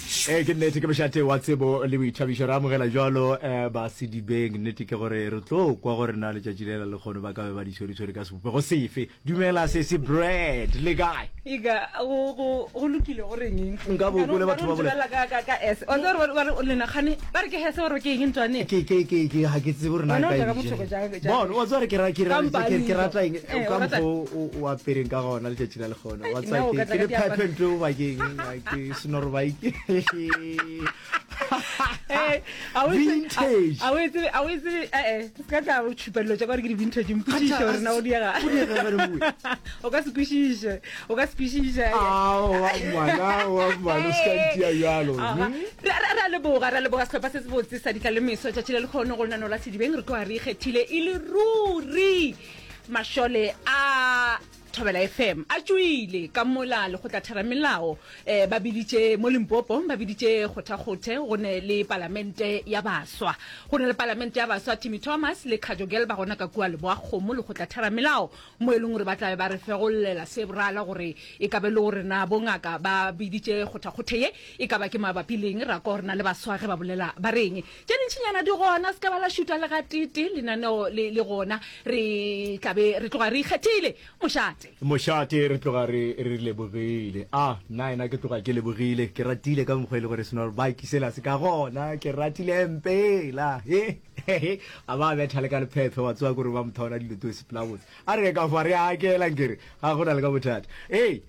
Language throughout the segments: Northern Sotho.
tiišo. Ee, ke nnete, ke mošate wa tsebo le boithabišo. Re amogela jalo um Basedibeng. Nnete ke gore re tlo kwa gore na letšatši lela lekgono ba ka be ba di tshweretshwere ka sebopego sefe. Dumela sesi Brad, le kae? Ega go go go lokile go reng eng? Nka bo ko le batho ba bole. Ba ka ka ka S. O tsere ba ba o lena gane ba re ke hese gore ke eng ntswane. Ke ke ke ke ha ke tsebo rena ka ka bothoko ja ka. Bona wa tsere ke ra ke ra ke ke rata eng ka mpo o apereng ka gona le tšatši la le gona. Wa tsere ke ke phephe ntwe o ba ke eng. ke senorobaike eh, a o etse ee se ka tla o tšhupelelo tša kare ke di-vintage mpošiše gore na o diega o ka se kwešiše o ka se kwešiše ra leboga ra leboga setlhopha se se botse sa ditla le meso tšatši le lekgono go lenano la sedibeng re tloa re ikgethile e le ruri mašole a Thobela FM a tšoile ka mola lekgotlatheramelao eh, ba biditše mo Limpopo ba biditše kgothakgothe go ne le palamente ya baswa go ne le palamente ya baswa Timmy Thomas le Khajo Girl ba gona ka kua Leboakgomo lekgotlatheramelao mo e leng gore ba tlabe ba re fegollela se borala gore e ka be le gore na bongaka ba biditše kgothakgothe ye e ka ba ke mabapi leng ra ko rena le baswa ge ba bolela ba reng tše dintšinyana di gona se ka ba la šutwa le gatee lenaneo le, le gona re tla be re tloga re ikgethile mošate mošate re tloga re re lebogile a nna ena ke tloga ke lebogile ke ratile ka mokgwa e le gore senor baki sela se ka gona ke ratile mpela e a ba betha le ka lephephe wa tsoa kore ba mothaona dilotose pelabotse a re ka fa re akela nkere ga go na le ka bothata e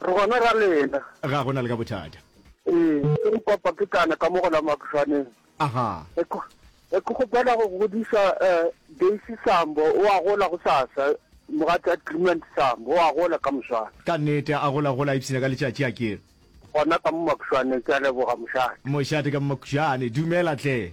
Re gona ra lena. Ga go na le ka bothata. Ee, ke go papa ke tlana ka mo go la Makušwaneng. Aha. Ke go, ke go kgopela go godiša eh, Daisy Sambo, o a gola go sasa. Mogatša Clement Sambo, o a gola ka moswane. Ka nnete, a gola gola ipshina ka letšatši a ke. Gona ka mo Makušwaneng, ke a leboga mošate. Mošate ka mo Makušane, dumela hle.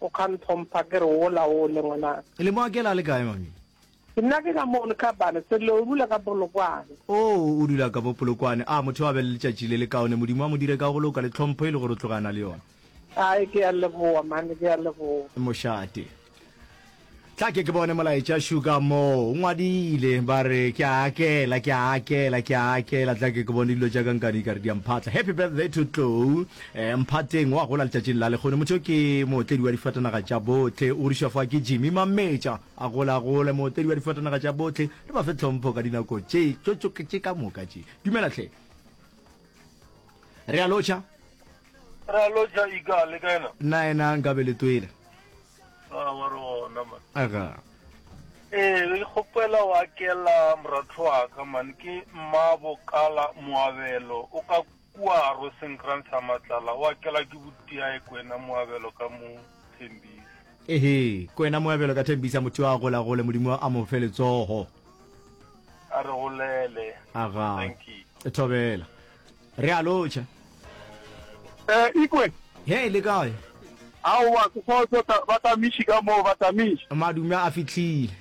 O ka ntlhompha ke re wola wole ngwanaka. E le mo Akela a le kae mami? Ke nna ke ka mo le kabane Sello o dula ka Polokwane. Oh o dula ka bo Polokwane. A motho a be le letšatši le le kaone Modimo a mo dire ka go loka le tlhompho e le gore o tloga a na le yona. Ai ke a leboa mane ke a leboa. Mošate. Tla ke ke bone molaetša Sugar moo o ngwadile ba re ke a akela ke a akela ke a akela tla ke ke bone dilo tša ka nkane di ka re di a mphatla happy birthday to tlou eh, mphateng wa gola letšatšing la lekgone motho ke mootledi wa difatanaga tša bohle o rišwa fa ke jimmy mametša a gola a gole mootledi wa difatanaga tša bohle re ba fe tlhompho ka dinako tše tšotsoketše ka moka tše dumela hle re a lotšha re a lotšha ika le ka ena nna ena nka be le twele aga ee re kgopela wa kela moratho wa ka man ke mmabo kala moabelo o ka kua ro senkran sa matlala wa kela ke butiae kwena moabelo ka mo thembisa ehe kwena moabelo ka thembisa motho a gola gole modimo a mo fe letsogo a re golele aga thobela Re a lotšha. Eh, Ikwe. Hei, le kae? Aowa, ke kgotso, ta, batamiši ka moo, batamiši. Madume a fihlile.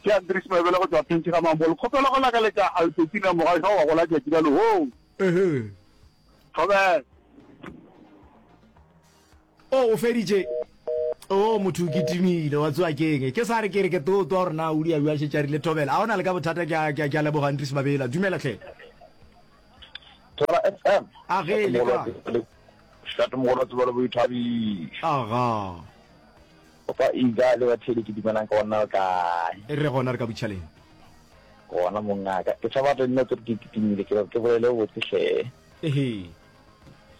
Ke Andries Mabele go tšwa Phentši ga Mambolo. Kgopela go lakaletša Albertina Mogašwa wa go la tšatši la lehoo. Ehe. Thobela. Oh, o feditše? Oh, motho o kitimile, wa tsoa ke eng? Ke sa re ke re ke too twa gore na o di a bua šetše a rile thobela. A o na le ka bothata ke a, ke a, ke a leboga Andries Mabela. Dumela hle. Tswala FM. A ge le kae? Shate mogolo tseba le boithabiš. Aga. O fa iga le ba thele ke dumelang ka ona o kae? E re gona re ka butšhaleng. Gona mongaka. Ke tshaba re nne ke re ke kitimile ke ke bolele o botse hle. Ehe.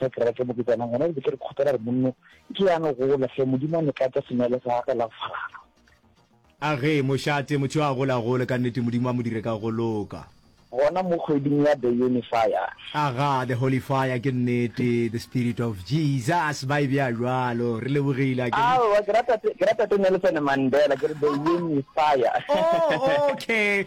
Ge ke reke moketšana, gona re be ke re kgopela gore monno e tlo ya no gola, hle Modimo a no tlatša senwelo sa gagwe la go falala. A ge, mošate, motho yo a gola a gole, ka nnete, Modimo a mo dire ka go loka. Gona mo kgweding ya The Unifier. A ga, The Holy Fire, ke nnete, The Spirit of Jesus, ba e bea bjalo. Re lebogile, akere? Aowa, ke rata, ke rata tše Nelson Mandela, ke re The Unifier. Oh, okay.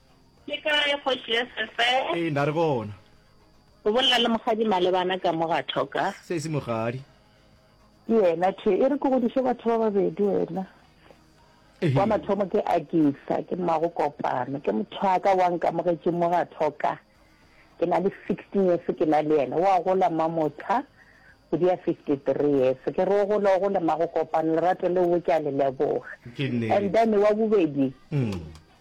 Le kae kgoši ya sefe? Ee, nda re gona. O bolela le mogadi Malebana ka mo ga Thoka. Se e se mogadi. Ke yena the e re ke godiše batho ba babedi wena. Wa mathomo ke Agisa, ke mmago Kopano, ke mothwaka wa nkamogetše mo ga Thoka. Ke na le sixteen years ke na le yena. Wa gola Mamotsha kgwedi ya fifty three years. Ke re o gole o gole mmago Kopano, lerato leo ke a le leboga. And then wa bobedi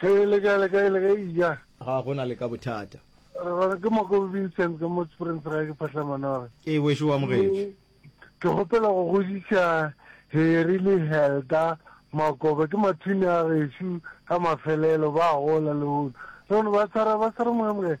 Ge e le ka le ka e le ge eja. Ga go na le ka bothata. Re gona ke Makobi Vincent ka mo Springs ga ke phahla manore. Ee wešo wa mogetši. Ke gopela go godiša Harry le Helda Makoba ke mathini a gešo ka mafelelo ba gola le hono. Re gona ba tshwara ba tshwara moya mogetši.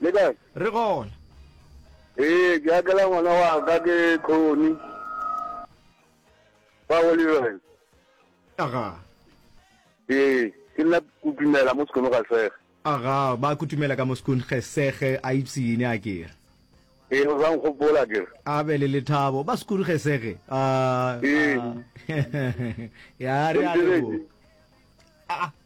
Le kae? Re gona. Ee, ke akela ngwana wa ka ke Khoni. Ba go Leroy. Aga. Ee, ke nna kutumela mo sekono ga sege. Aga, ba kutumela ka mo sekun ge sege a ipsine a kere. Ee, o sa nkgopola ke re. A be le lethabo ba sekuru ge sege. A. Ee. Ya re a lebo. A.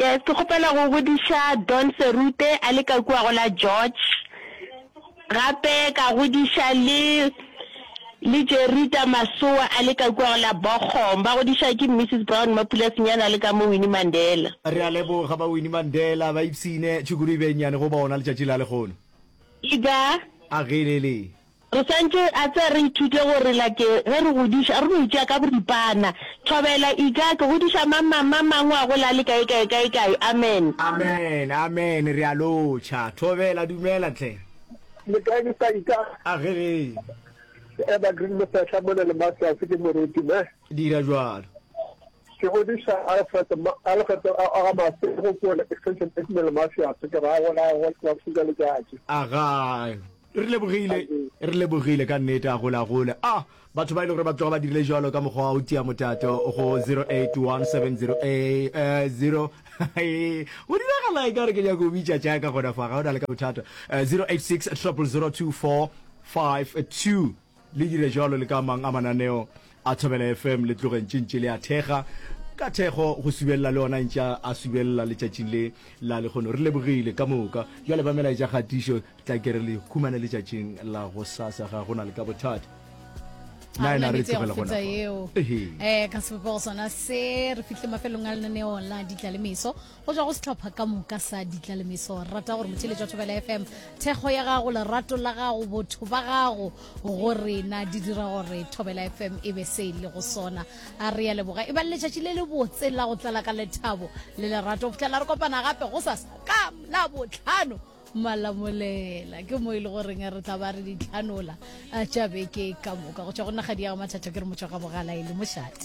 Yes, ke kgopela go godiša Don Serute a le ka kua go la George. Gape ka godiša le le Jerita Masoa a le ka kua go la Bogom. Ba godiša ke Mrs Brown Mapula Senyane a le ka mo Winnie Mandela. Re a leboga ba Winnie Mandela ba ipshine tšhukuru e be nnyane go bona letšatši la lehono. Ega. A ge le le. Re swanetše a tse re ithute gore like ge re godiša re no itšea ka boripana. Thobela, Ika, ke godiša mang mang mang mang wa go la le kae kae kae kae. Amen. Amen, amen, re a lotšha. Thobela, Dumela hle. Le kae Mister Ika? A ge ge. Evergreen Mosehla mona le Masters ke moruti ne. Dira bjalo. Ke godiša Alfred ma, Alfred a a ga Mase go kole extension eight mele Masters ke ra go la go la fuka letšatši. A ga. Re lebogile, re lebogile ka nnete. A gole, a gole. A batho ba e le gore ba tloga ba dirile jalo ka mokgwa wa go tia motato go 081700 go diragala e ka re ke nyako bitša tša ka gona fa ga o na le ka bothata 086 002452 Le dire bjalo le ka a mang a mananeo a Thobela FM, le tloge ntše ntše le a thekga. Ka thekgo, go subelela le ona ntše a subelela letšatšing le la lehono. Re lebogile ka moka. Bjale ba melaetša kgatišo tla ke re le humane letšatšing la gosasa, ga go na le ka bothata. Ga re na metse ya go feta eo. Um ka sebopego sona se, re fihle mafelong a lenaneo la ditla le meso. go tswa go setlhopha ka moka sa ditlalemeso rata gore motšheletšwa thobela fm thekgo ya gago lerato la gago botho ba gago go rena di dira gore thobela fm e be se e le go sona a re ya leboga e ba le letšatši le le botse la go tlala ka lethabo le lerato go fitlhela re kopana gape go sa ka la botlhano malamolela ke mo e le goreng re tla ba re ditlhanola a tša beke ka moka go tšwa go nagadi ya go mathatha ke re motšwa ga bogala e le mošate